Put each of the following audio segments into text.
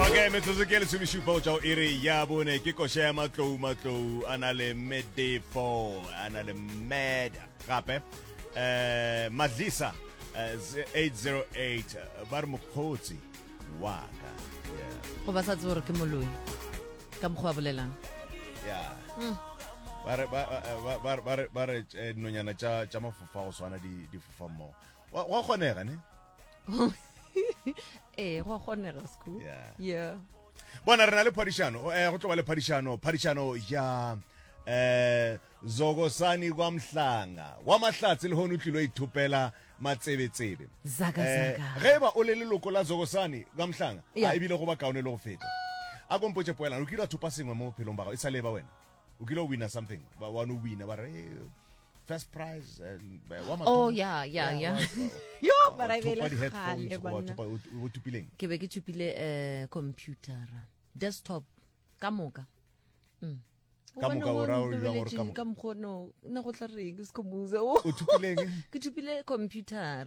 okay metsotso ke lesomešupa go tšwa go iri ya bone ke koša ya matlou matlou a na le medefo a na le med gape um madlisa 808 ba re mokgotsi wa ka go ba sa tse gore ke moloi ka mokgwa wa bolelang yeah. mm. ba re nonyana tša mafofa go swana di fofa mmogo wa kgonega ne ee eh, go kgonega school yeah bona re na le phadišano eh, go tlo ba le phadišano phadišano ya eh zokosani kwa mhlanga wa mahlatse le hone o tlilo ithopela matsebetsebe eh, ge ba o le leloko la zokosani kwa mhlanga a ebile go ba kaone le go feta a kompotse poelana o kile a thopa sengwe mo bophelong ba gago e sa leba wena o kile o wina something ba wane o wina ba re first prize and uh, wa mathomo oh yeah yeah yeah yo but i bele khale bona o tupileng ke be ke tupile eh computer desktop ka moka mm ka moka o ra o ra gore ka moka ka moka no na go tla reng se komuze o tupileng ke tupile computer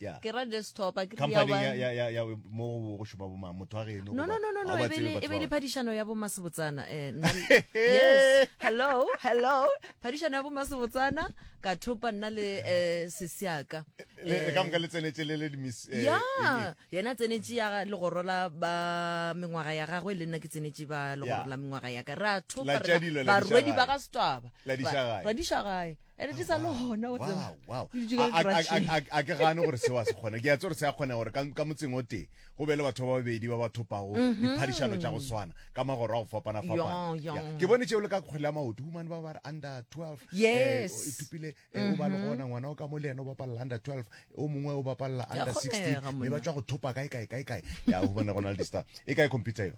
Yeah. ke ra desktop a ke re ya company ya, one ya, ya, ya mo go- go šopa bomang motho wa geno no no no no no e be le- e be le phadišano ya bomasebotsana eh, nna le- yes hello hello phadišano ya bomasebotsana ka thopa nna le eh, sesiaka Eh, ka moka le tsenetse le le dimis- eh, ya eng- yena tsenetše ya legoro la ba mengwaga ya gagwe le nna ke tsenetše ba legoro Ya. la mengwaga ya ka ra thopa La re tša dilo, la barwedi dišagae. ba ga setwaba La dišagae. ra dišagae ene di sa le gona go tseba wow Di dutše ka A- a- a- ditratšheng. a- a- a ke gane gore seo a se kgone ke a tse gore se a kgonega gore ka ka motseng o tee go be le batho ba babedi ba ba thopago diphadišano tša go swana ka magoro a go fapana Yong, fapana yong. Yeah. ke bone tšeo le ka kgwele ya maoto humane ba ba re under 12 Yes. eh, o ithopile eh, o ba le gona ngwana o ka mo le ene o bapalela under 12 o mongwe o bapalela Ya under kgonega, 16 mme ba monna. tšwa go thopa kae kae kae kae ya humane go na le dista e kae computer eo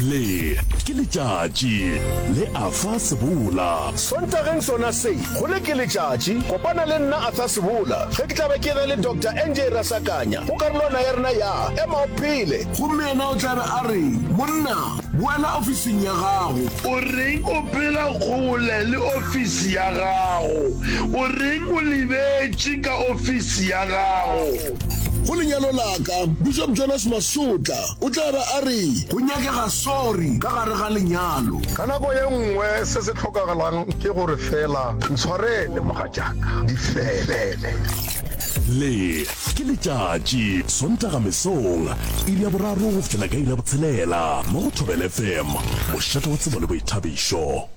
le ke letšatši le a fa sebola sontageng sona se go le ke letšatši kopana le nna a fa sebola ge ke tlabe ke ge le dr nj rasakanya go karolwana ya rena ya ema o phele gomme yena o tlabe a re monna boela ofising ya gago o reng o phela kgole le ofisi ya gago o reng o lebetše ka ofisi ya gago go lenyalo laka bishop jonas masotla O tla ba a re, Go nyakega sorry ka gare ga lenyalo. Ka nako ye nngwe se se hlokagalang ke gore feela ntshwarele mogatšaka, di fele. Le ke letšatši, Sontaga mesong, iri ya boraro go fihlela ka iri ya botshelela mo go Thobela FM, mošate wa tsebo le boithabišo.